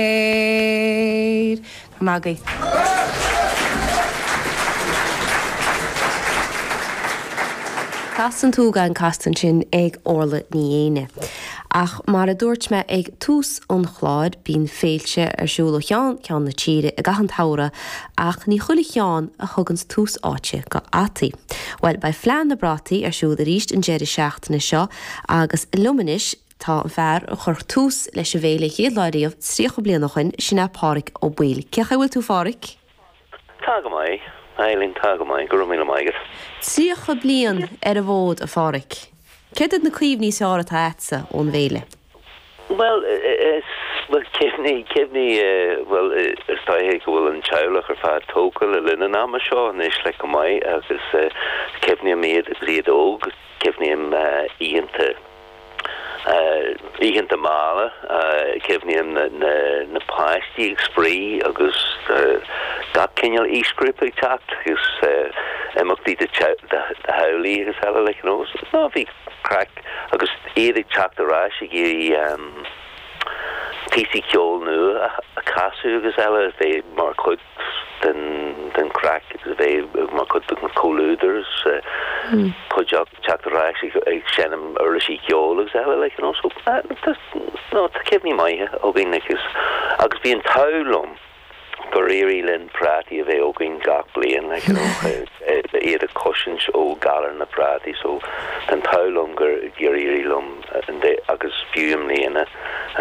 léir. Tá mé agaibh. Castar tú gan Castain ansin ag Orlaith Ní Fhéinne. Ach mar a dúirt mé ag tús an chláir, bíonn féilte ar siúl ó cheann ceann na tíre i gcaitheamh an tsamhraidh ach ní chuile cheann a thugann tús áite go fhataí. Bhuel, beidh Fleadh na bPrátaí ar siúl arís an deireadh seachtaine seo agus liom anois, tá an fear a chuir tús leis an bhféile chéad lá riamh tríocha bliain ó shin, sin é Páraic Ó Baoill. Cé chaoi a bhfuil tú Pháraic? Tá go maith, a Eibhlín, tá go maith, go raibh míle maith agat. Tríocha bliain ar an bhfód, a Pháraic. Céard iad na cuimhní is fearr atá agatsa ón bhféile? Bhuel, bhuel, cuimhní, cuimhní eh, bhuel eh, is dóigh go bhfuil an teaghlach ar fad tógtha le linn an ama seo anois like go maith agus eh, cuimhním iad agus iad óg, cuimhním eh, oícheanta. Oícheanta malla, cuimhním na páistí ag spraoi agus gach cineál aoisghrúpa ag teacht agus imeachtaí do theaghlaigh agus eile like you know so bhí craic agus iad ag teacht ar ais ag iarraidh píosaí ceoil nua a chasadh agus eile mar chuid den chraic a bheith mar chuid den chomhluadar is chuid acu teacht ar ais ag seinm uirlisí ceoil agus eile like you know so no tá cuimhní maithe againn like agus bhí an t-ádh liom gur éirigh linn prátaí a bheith againn gach bliain like you know iad a chosaint ó galar na bprátaí so tá an t-ádh liom gur gur éirigh liom agus fiú i mbliana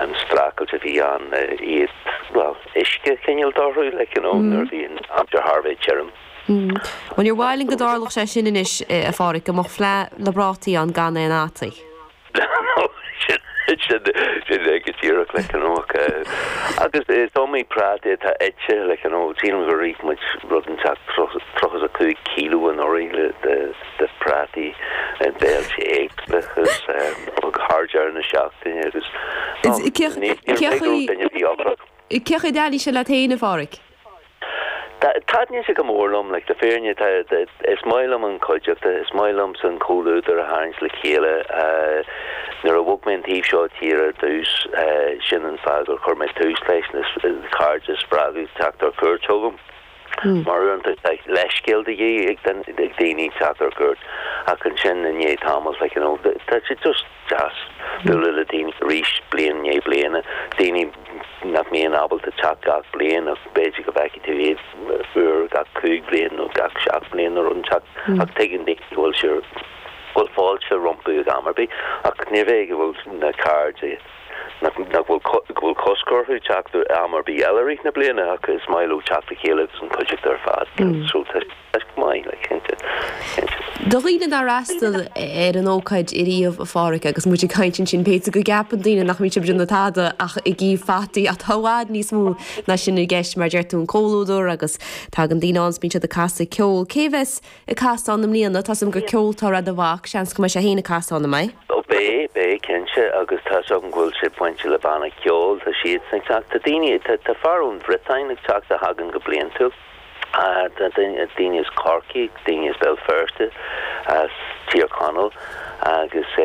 an streachailt a bhí ann iad a uisce a choinneáil orthu like you know nuair a bhíonn aimsir thar a bheith tirim. Bhuel níor mhaith linn go dtarlódh sé sin anois a Pháraic, go mbeadh fleadh na bprátaí ann gan aon fhataí. No, sin, sin é go díreach like you know ach eh agus is iomaí práta atá ite like you know sílim gur ith muid rud inteacht 35 kilo anuraidh le de phrátaí ar bhéilte éagsúla agus thar deireadh na seachtaine agus Is céard níor bhraith céard go raibh duine a bhí ocrach. faoi céard a chiallaíonn sé leat féin a Pháraic? Tá, taitníonn sé go mór liom, like le fírinne tá, is maith liom an cuideachta, is maith liomsa an comhluadar a tharraingt le chéile. Nuair a bhog mé an taobh seo tíre ar dtús, sin an fáth gur chuir mé tús leis na cairde a spreagadh teacht ar cuairt chugam. Mar uaireanta tá leithscéal de dhíth ag daoine, teacht ar cuairt, ach ansin i ndiaidh tamaill, like, you know, tá sé just deas bualadh le daoine arís bliain i ndiaidh bliana, daoine nach mbíonn ábalta teacht gach bliain ach b'fhéidir go bhfeicfidh tú iad uair gach cúig bhliain nó gach seacht mbliain nó rud inteacht ach tuigeann daoine go bhfuil sé, go bhfuil fáilte rompu ag am ar bith ach murab é go bhfuil na cairde. Nach bhfuil cosc orthu teacht am ar bith eile i rith na bliana ach is maith leo teacht le chéile agus an chuideachta ar fad a bheith anseo. Tá sé go maith le cinnte, cinnte. Do dhaoine nár fhreastal ar an ócáid ariamh a Phádhraic agus muid ag caint ansin b'fhéidir go gceapann daoine nach mbíonn sibh ag déanamh tada ach ag ithe fataí ach tá i bhfad níos mó ná sin i gceist mar deir tú an comhluadar agus tagann daoine ann agus bíonn siad ag casadh ceoil. Cé bheas ag casadh ann i mbliana, tá a fhios agam gur ceoltóir é do mhac, seans go mbeidh sé féin ag casadh ann an mbeidh. Ó beidh, beidh cinnte agus tá a fhios agam go bhfuil sé bainte le banna ceoil, tá siadsan ag teacht, tá daoine, tá fear ón Bhriotáin ag teacht a thagann go bliantúil, tá daoine as Corcaigh, daoine as Béal Feirste, as Tír Chonaill agus.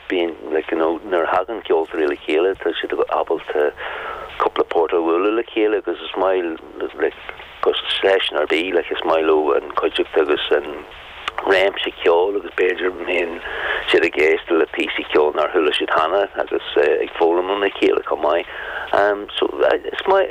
bíonn like you know nuair a thagann ceoltóirí le chéile tá siad ábalta cúpla port a bhualadh le chéile agus is maith le gach seisiún ar bith like is maith leo an chuideachta agus an réimse ceoil agus b'fhéidir go mbíonn siad ag éisteacht le píosaí ceoil nár chuala siad cheana agus ag foghlaim óna chéile chomh maith so is maith